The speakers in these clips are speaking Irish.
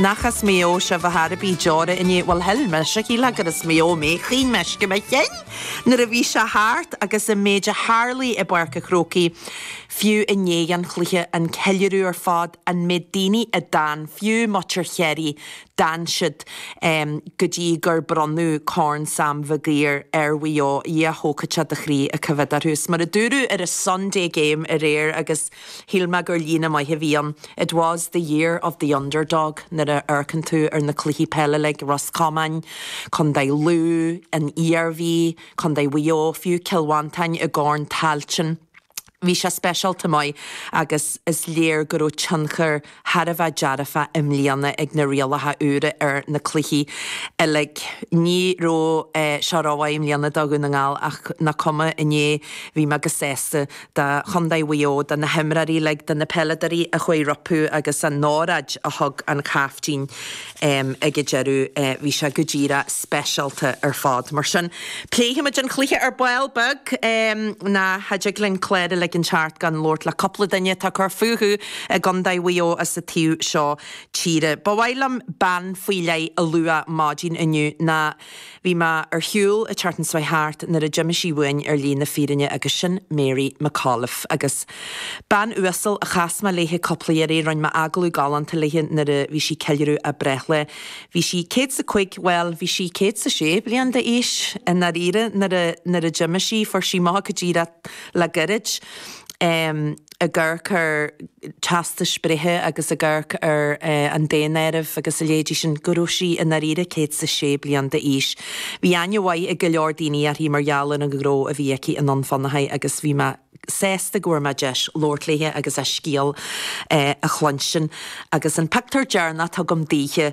Nach as Maigh Eo sibh a chara? a bhí deora i ndiaidh, bhuel shil mise go sílfeá gur as Maigh Eo mé, chaoin mé uisce mo chinn nuair a bhí sé thart agus an méid a tharla i bPáirc a' Chrócaigh fiú i ndiaidh an chluiche, an ceiliúradh ar fad, an méid daoine a d'fhan, fiú muintir Chiarraí, d'fhan siad go dtí gur bronnadh Corn Sam Mhig Uidhir ar Mhaigh Eo, Dhia thógfad sé do chroí ag coimhéad orthu. Agus mar a dúradh ar an Sunday Game aréir agus. Shíl mé gur líne mhaith a bhí ann, It was the year of the underdog nuair a amharcann tú ar na cluichí peile uilig, Ros Comáin, contae Lú, an Iarmhí, contae Mhaigh Eo, fiú Cill Mhantáin i gCorn Tailteann. Bhí sé speisialta maith agus is léir go raibh tionchar. thar a bheith dearfa i mbliana ag na rialacha úra ar na cluichí uilig. Ní raibh sé chomh rómhaith i mbliana do Dhún na nGall ach nach cuma, inné bhí mé chomh sásta do chontae Mhaigh Eo, do na himreoirí uilig, do na peileadóirí a chuaigh rompu agus an óráid a thug an caiftín. ag an deireadh bhí sé go díreach speisialta ar fad. Mar sin pléifimid an cluiche ar ball beag. Ní thig linn clár a ligean thart gan labhairt le cúpla duine atá ag cur fúthu i gContae Mhaigh Eo as an taobh seo tíre. Ba mhaith liom bean faoi leith a lua maidin inniu ná Bhí mé ar shiúl i Churtonsoy thart nuair a d'imigh sí uainn ar shlí na fírinne agus sin Mary McAuliffe agus bean uasal a chas mé léithe cúpla iarraidh, rinne mé agallamh galánta léithe nuair a bhí sí ag ceiliúradh a breithlae. Bhí sí céad is a cúig, bhuel, bhí sí céad is a sé bliain d'aois i ndáiríre nuair a, nuair a d'imigh sí, fuair sí amach go díreach le goirid. ag amharc ar theastas breithe agus ag amharc ar an daonáireamh agus a leithéidí sin, go raibh sí i ndáiríre céad is a sé bliain d'aois. Bhí aithne mhaith ag go leor daoine uirthi mar gheall ar an ghnó a bhí aici i nDún Fionnachaidh agus bhí mé sásta go bhfuair mé deis labhairt léithe agus a scéal a chluinstin. Agus an pictiúr deireanach atá agam daoithe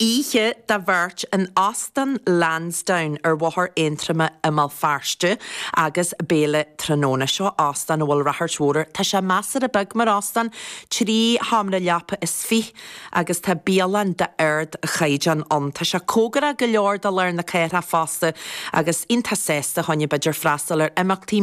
Oíche do bheirt in Óstán Lansdowne ar Bhóthar Aontroma i mBéal Feirste agus béile tráthnóna. Seo óstán a bhfuil ráchairt mhór air. Tá sé measartha beag mar óstán, trí sheomra leapa is fiche, agus tá bialann d'ardchaighdeán ann. Tá sé cóngarach go leor do lár na cathrach fosta agus iontach sásta fá choinne b'fhéidir freastal ar imeachtaí